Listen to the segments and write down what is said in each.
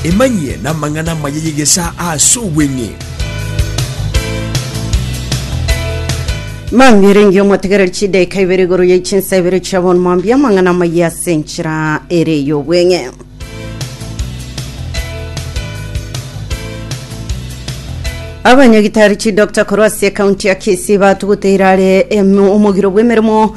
Emanyie namang'ana amaya y'egesaa ase obweng'e. Mambia erenge omotegereri chidaika ibere igoro ye chinsa ibere chia bono mambia amang'ana amaya ase enchera ere y'obweng'e. Abanyagitari chidokta korwa ase ekaunti ya Kisii batuguteire are em- omogiro bw'emeremo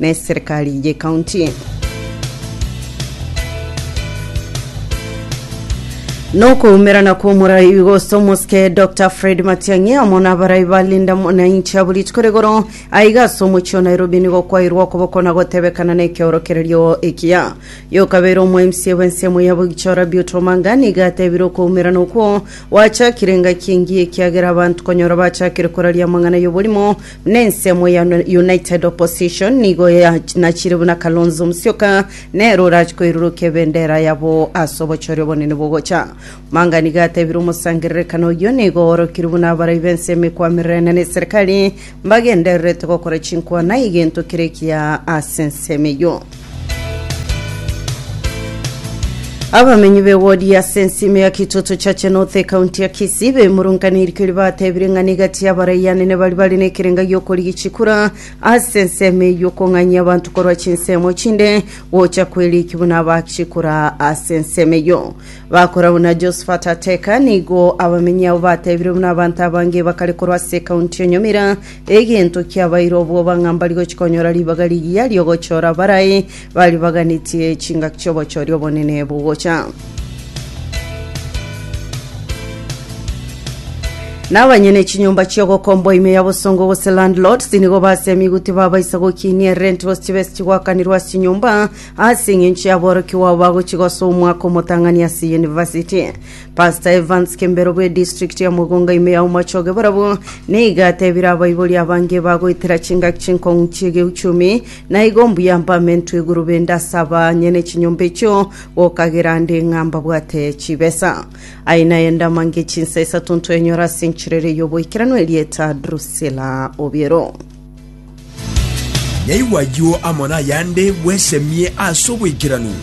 neserikari y'ekaunti. Nokoumerana kw'omorai gose omosike Dr Fred Matiang'i amo nabarai ba Linda Mwananchi abo rituko rigoro aiga ase omochie o Nairobi nigo kwairwe okoboko na gotebekana na ekeorokererio ekiya. Yokabeire omo MCA bw'ense emo ya Bogichora Beauty Omanga nigo atebire okoumerana okwo gwachakire engaki engiya ekiagera abanto konyora bachakire koraria amang'ana y'oborimo na ensemo ya United Opposition nigo ya- nachire buna Kalonzo Musyoka nere orache koirurukia ebendera yabo ase obochori obonene bogocha. Manga nigo atebire omosangererekano oyio nigo oorokire buna abarai b'ense emekwamererania na eserikari mbagendererete gokora chinkwana egento kere ekiya ase ensemo eyio. Abamenyi b'ewodi ase ensemo ya Kitoto Chache North ekaunti ya Kisii bemurunganeirie keria batebire ng'a niga chiabaraiyo anene baria bare nekerenga gi'okorigia chikura ase ensemo eye y'okong'anyia abanto korwa chinsemo chinde gocha kwerikia buna abaak chikura ase ensemo eyio. Bakora buna Josephat Ateka nigo abamenyi abo batebire buna abanto abange bakare korwa ase ekaunti ya Nyamira Egento kiabaire obwoba ng'a mbari gochia konyora ribaga rigiya ri'ogochora abarai baribaganetie chingaki chi'obochori obonene bogocha. Na abanyene chinyomba chi'ogokombwa ime ya bosongo gose landlords nigo base amigu tibabaisa gokiinia erenti gose chibesa chigwakanirwe ase chinyomba ase eng'encho y'aborokigwa abo bagochia gosoa omwaka omotang'ani ase University. Pastor Evans Kembero bwe district ya Mugunga ime ya Omochoge barabwo nigo atebire abaibori abange bagoetera chingaki chinkong'u chiegeuchumi na igo mbuya mpamentwe iguru bende ase abanyene chinyomba echio gokagera ande ng'a mbabwate chibesa aye naye ndamange chinsa isato ntwenyora ase enchirere y'oboikeranu erieta Drusilla Obiero. Naigwe ayio amo nayande bwesemie ase oboikeranu.